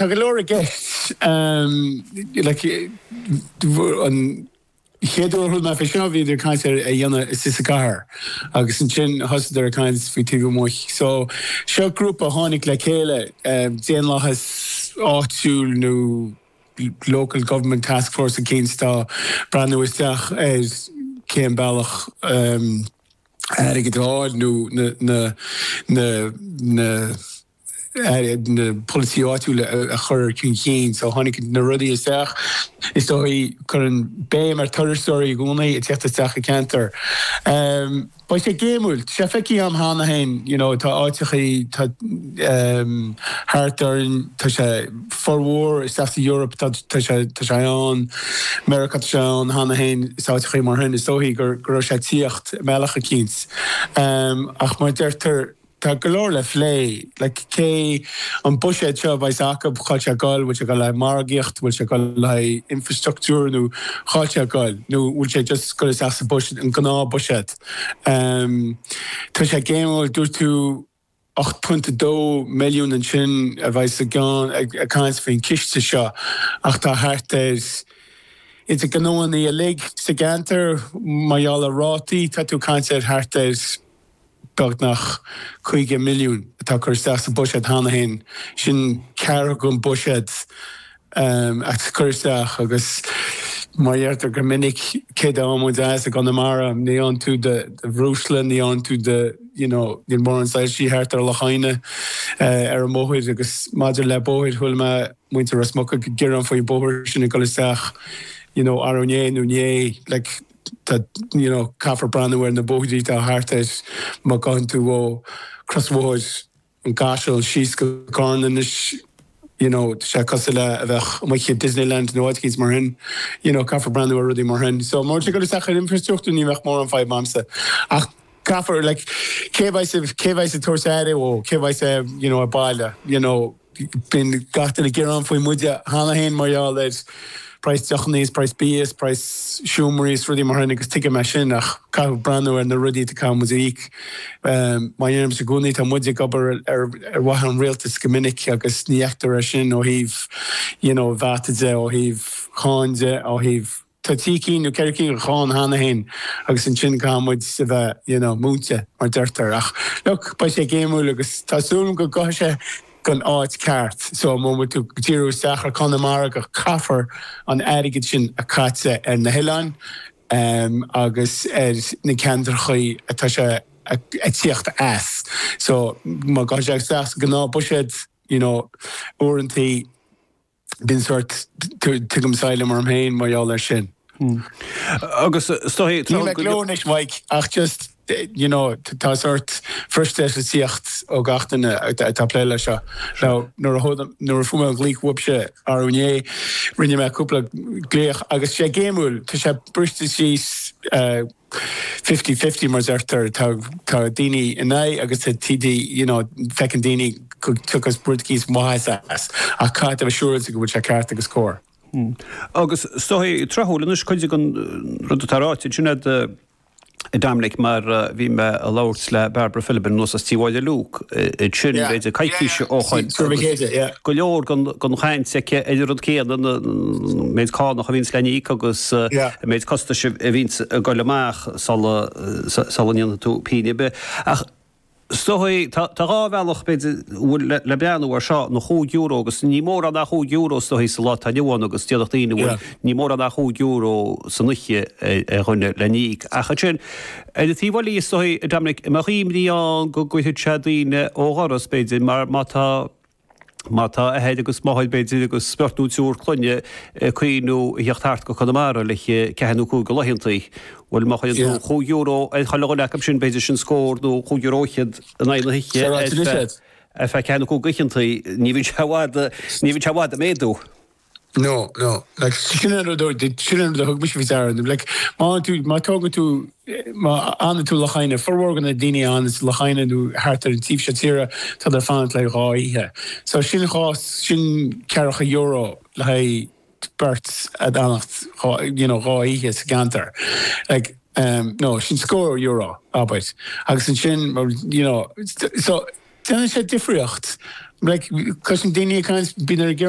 Tá go leor i gceist. An chéad uair a chuala mé faoi seo bhíodar ag caint ar é a dhéanamh istigh sa gcathair agus ansin thosaíodar ag caint faoi taobh amuigh. So seo grúpa a tháinig le chéile, daonlathas áitiúil nó local government task force eicínt atá ag breathnú isteach ar cén bealach le airgead a fháil nó na na polasaí áitiúla a chur chun cinn. So sin ceann de na rudaí isteach is dóigh cuireann béim ar turasóirí i gcónaí ag teacht isteach i gceantar. Beidh sé spéisiúil é a fheiceáil ann cheana féin you know tá áiteachaí tá ehm thart orainn tá sé i bhformhór áiteachaí san Eoraip tá tá sé tá sé i Meiriceá tá sé ann cheana féin is áiteachaí mar shin is dóigh go go raibh sé ag tíocht i mbealach eicínt. Ach mar deirtear Tá go leor le phlé. Like cén buiséad seo a bheas acub cá bhfuil sé ag gol? Bhfuil sé ag gol le margaíocht? Bhfuil sé ag gol le infrastructure nó cá bhfuil sé ag gol? Nó bhfuil sé just ag gol isteach sa buiséad, an gnáth buiséad? Umm tá sé spéisiúil. Dúirt tú ocht pointe a dó milliún ansin a bheas i gceist ag caint faoin gciste seo ach tá thart ar idir gnóthaí uilig sa gceantar mar gheall ar rátaí tá tú ag caint ar thart ar beagnach €50 milliún atá curtha isteach sa mbuiséad cheana féin. Sin ceathrú den bhuiséad atá curtha isteach agus mar a deirtear go minic, céard atá muid ag fáil as i gConamara? Ní fhán tú de bhreosla, ní fhán tú de you know, níl mórán soilsí thart ar leataobh an bhóthair agus maidir le bóthair, chuala mé muintir Ros Muc ag gearán faoin mbóthar sin ag dul isteach you know arú inné nó inné like. tá, you know, caithfear breathnú ar na bóithrí atá thart agus má ghabhann tú ó chrosbhóthar an Chaisil síos go Carna anois, you know, tá sé cosúil le bheith amuigh i Disneyland nó áit éicínt mar shin. You know, caithfear breathnú ar rudaí mar shin. So, má tá sé ag dul isteach ar infreastruchtúr ní bheadh mórán fadhb a'msa. Ach caithfear, like, cé a bheas, cé a bheas ag tabhairt aire dhó, cé a bheas, you know, ar baile, you know, Bíonn gach duine ag gearán faoi muide cheana féin mar gheall ar praghas deochanna is praghas bia is praghas seomraí is rudaí mar sin agus tuigim é sin ach caithfidh breathnú ar na rudaí a caithfidh muid a íoc. Mar a deirimse i gcónaí tá muid ag obair ar mhaithe leis an rialtas go minic agus ní fheictear é sin ó thaobh you know VAT de, ó thaobh cháin de, ó thaobh Tá trí cinn nó ceithre cinn de cháin cheana féin agus ansin caithfidh muid a bheith, you know, múinte, mar deirtear. Ach, look, beidh sé géimiúil agus tá súil agam go gcuirfidh sé gon áit ceart. So, má bhfuil tú ag díriú isteach ar Conamara go caithfear an airgead sin a chaitheamh ar na hoileáin em agus ar na ceantrachaí atá sé ag tíocht as. So, má gcuirfidh sé isteach sa gnáth buiséad, you know, uaireantaí, bíonn sórt, tuigim saighleam orm féin mar gheall ar sin. Agus is dóigh traochta. Níl mé ag gleo anois Mike ach just you know tá sórt frustratisaíocht ó gach duine atá ag plé le seo. Now nuair a fuair mé an ghlaoch uaibhse arú inné rinne mé cúpla glaoch agus sé géimiúil tá sé briste síos, fifty-fifty mar deirtear tá tá daoine in aghaidh agus tá TD you know feiceann daoine go dtiocfas rud eicínt maitheas as ach caithfidh tú a bheith siúráilte go bhfuil sé ceart agus cóir. Hmm. Agus is dóigh tráthúil anois cuid den rud atá ráite ansin a'd a Dominic mar bhí mé a' labhairt le Barbara Philibin anuas as Tí Mháille Luke ansin b'fhéidir coicís ó shoin agus go leor den chaint aici ar an rud céanna, an méid cánach a bhíonns le n-íoc agus an méid costais a bhíonns ag goil amach sula ndéanfaidh tú pingin ar bith. Ach is dóigh, tá dhá bhealach b'fhéidir a bhfuil le breathnú air seo, na chúig euro agus ní mórán é chúig euro is dóigh sa lá atá inniu ann agus déarfadh daoine bhuel ní mórán é chúig euro san oíche ar dhuine le n-íoc. Ach ansin ar an taobh eile is dóigh, a Dominic, an mbeadh imní ann go gcuirfidh sé daoine ó dhoras b'fhéidir mar má tá, Má tá athair agus máthair, b'fhéidir, agus beirt nó triúr clainne ag cuimhniú a theacht thart go Conamara le haghaidh ceathair nó cúig de laethanta, bhuel, má chuireann tú chúig euro ar chuile dhuine acu sin, b'fhéidir, sin scór nó cúig euro fhichead in aghaidh na hoíche ar feadh ceathair nó cúig oícheanta, ní bhíonn sé i bhfad ag méadú. No, no, like, sin an rud a, sin an rud a thug mise faoi deara, nó like, má fhanann tú, má tógann tú, má fhanann tú Loch Eidhneach, formhór de na daoine a fhanann sa Loch Eidhneach nó thart ar an taobh seo tíre, tá tú ag fanacht le dhá oíche. So sin dhá, sin ceathracha euro le haghaidh beirt ag fanacht dhá, you know, dhá oíche sa gceantar. Like, em, no, sin scór euro, abair. Agus ansin, mar, you know, so, déanann sé difríocht. Like, cloisim daoine ag caint, bíonn ar an ghearán,